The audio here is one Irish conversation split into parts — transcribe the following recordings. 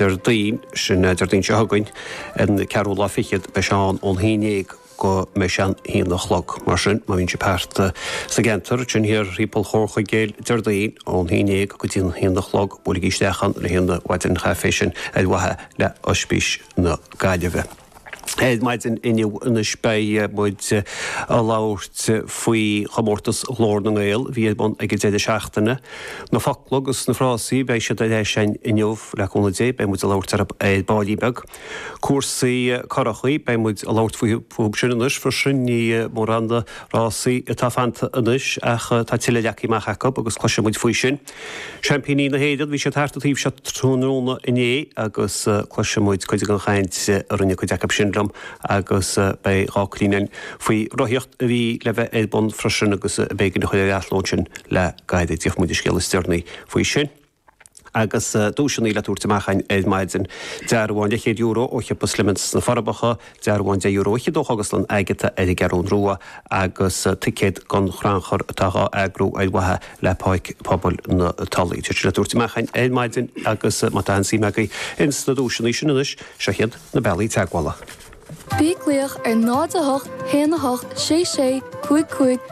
Déardaoin sin, Déardaoin seo chugainn, an 24ú lá, beidh sé ann ón haon dhéag go mbeidh sé an haon a chlog. Mar sin, má bhíonn sibh thart sa gceantar, sin thiar timpeall Chomhar Chuigéil Déardaoin ón haon dhéag go dtí an haon a chlog, buailigí isteach ann le haghaidh an mhaidin chaife sin ar mhaithe le h-oispís na Gaillimhe. Ar maidin inniu anois beidh muid a labhairt faoi chomórtas Ghlór na nGael a bhí ar bun ag an deireadh seachtaine. Na focla agus na frásaí beidh siad ar ais a'inn inniu le cúnamh Dé. Beidh muid a labhairt ar baillín beag. Cúrsaí currachaí, beidh muid a labhairt fúthu sin anois freisin. Ní mórán rásaí atá fanta anois ach tá tuilleadh leagthaí amach acu agus cloisfidh muid faoi sin. Seaimpíní na hÉireann, bhí siad thart an taobh seo tráthnóna inné agus cloisfidh muid cuid den chaint a rinne cuid acu sin liom agus beidh dhá chruinniú againn faoi rothaíocht a bhí le bheith ar bun freisin agus b'éigean a chur ar athló ansin le gairid. Gheobhaidh muid an scéal is deireanaí faoi sin. Agus duaiseanna le tabhairt amach againn ar maidin. Dearbhán leathchéad euro ó Shiopa Slemon's sna Forbacha, Dearbhán €30 ó Chógaslann Agata ar an gCeathrún Rua agus ticéad don chrannchur atá á eagrú ar mhaithe le páirc pobail na Tulaí. Tá siad le tabhairt amach ar maidin agus má tá aon suim agaibh ins na duaiseanna sin anois, seo iad na bealaí teagmhála. Bí ag glaoch ar 08 1 8 6 6 5 5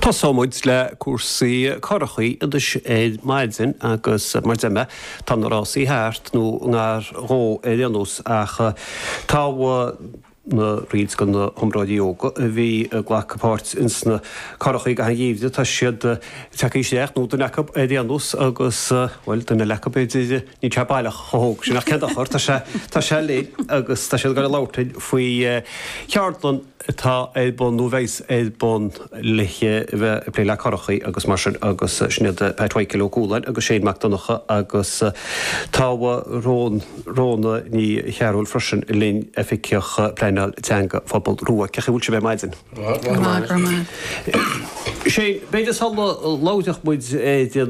Tosóimid le cúrsaí currachaí anois ar maidin agus mar a deir mé, tá na rásaí thart nó ngar dhó ar aon nós ach tá roinnt de na hiomróirí óga a bhí ag glacadh páirt ins na currachaí i gcaitheamh an gheimhridh, tá siad ag teacht isteach nó duine acu ar aon nós agus bhuel duine eile acu b'fhéidir. Níl sé baileach chomh hóg sin ach cén dochar, tá sé, tá sé linn agus tá siad ag gabháil ag labhairt linn faoi cheardlann atá ar bun nó a bheas ar bun le bheith ag plé le curachaí agus mar sin agus sin iad Pat Mhichael Ó Cualáin agus Shane Mac Donncha agus tá Rhona Ní Chearbhaill freisin linn, Oifigeach Pleanáil Teanga Phobal Rua. Cén chaoi a bhfuil sibh ar maidin? Shane, b'fhéidir sula labhróidh muid ar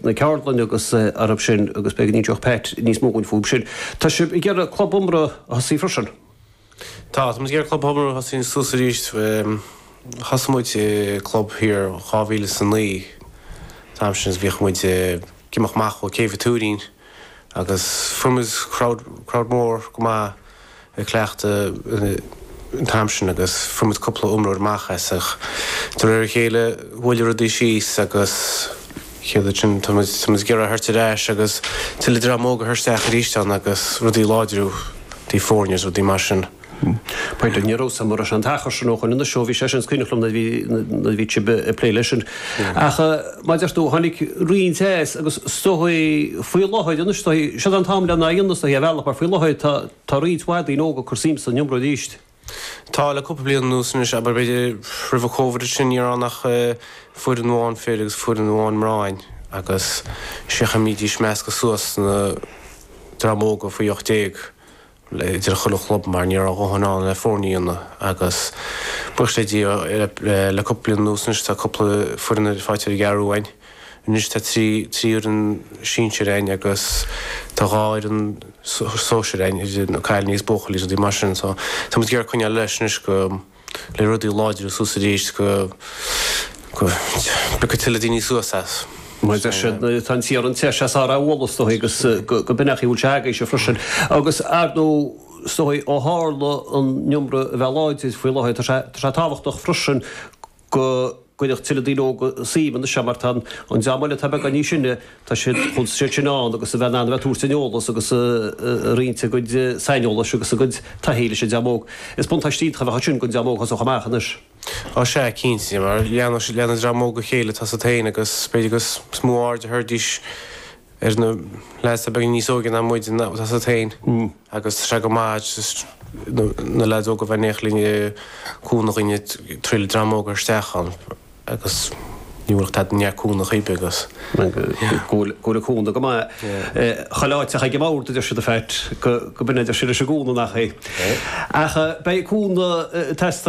na ceardlanna agus orthub sin agus beidh, míneoidh Pat níos mó dhúinn fúthub sin. Tá sib ag iarraidh club iomramh a thosú freisin? Tá, tá muid ag iarraidh club iomramh a thosú suas arís. Thosaigh muid club thiar 2009. An t-am sin bhíodh muid ag imeacht amach ó Chéibh an Tuairín. agus fuair muid crowd mór go maith ag cleachtadh an t-am sin agus fuair muid cúpla iomróir amach as ach de réir a chéile mhoilligh rudaí síos agus céard sin tá muid tá muid ag iarraidh é a thabhairt ar ais agus tuilleadh dream óg a chur isteach arís ann agus rudaí a láidriú i dtaobh foirne is rudaí mar sin. B'fhéidir, ní raibh a fhios a'm arbh é an t-achar sin ó shoin anois ó bhí sé sin is cuimhneach liom nuair a bhí sibh ag plé leis sin. Ach mar a deir tú, tháinig roinnt ar ais agus is dócha faoi láthair anois, siod an t-am lena dhéanamh is dócha, ar bhealach mar faoi láthair tá roinnt mhaith daoine óga ag cur suim san iomramh arís. Tá le cúpla bliain anuas anois, abair b'fhéidir roimh an Covid is sin ní raibh ann ach foireann amháin fir agus foireann amháin mná a'inn agus 'sé an chaoi a mbídís ag meascadh suas na dream óga faoi ocht déag idir chuile chlub mar ní raibh a dhóthain ann le foirne a dhéanamh agus buíochas le Dia le cúpla bliain anuas anois tá cúpla foireann faighte ar an gCeathrú Rua againn. Anois tá trí trí fhoireann sinsir againn agus tá dhá fhoireann sóisir againn, cailíní agus buachaillí is rudaí mar sin so tá muid ag iarraidh coinneáil leis anois go le rudaí a láidriú suas arís go bpiocfaidh tuilleadh daoine suas é. Mar tá sé, tá an t-iarann te, is ea is fearr é a bhualadh is dóigh agus gurb in é an chaoi a bhfuil sé agaibhse freisin. Agus ar ndóigh, is dóigh ó tharla an iomramh a bheith láidir faoi láthair, tá sé tábhachtach freisin go, gcuirfeadh tuilleadh daoine óga suim ina seo mar tá an dream eile atá beagáinín sine, tá siad chun siad sin ann agus a bheith in ann a bheith ag tabhairt an eolais agus ag roinnt a gcuid saineolais agus a gcuid taithí leis an dream óg. Is buntáiste iontach a bheadh ansin don dream óg a thosódh amach anois. Á sea, cinnte, mar leanann an dream óg a chéile, tá a fhios agat féin agus b'fhéidir go is mó aird a thabharfaidís ar na lads a bheadh níos óige ná muide tá a fhios agat féin agus tá sé go maith just na lads óga a bheith in éineacht linn ag cúnamh dhúinn ag traíáil dream óg a fháil isteach ann agus ní bhuailfeadh tada neart cúnamh chuige agus go bhfuil cúnamh go maith chuile áit ach ag an mbord a deir siad in fact go go minic a deir siad leis an gcúnamh nach hé? Ach beidh cúnamh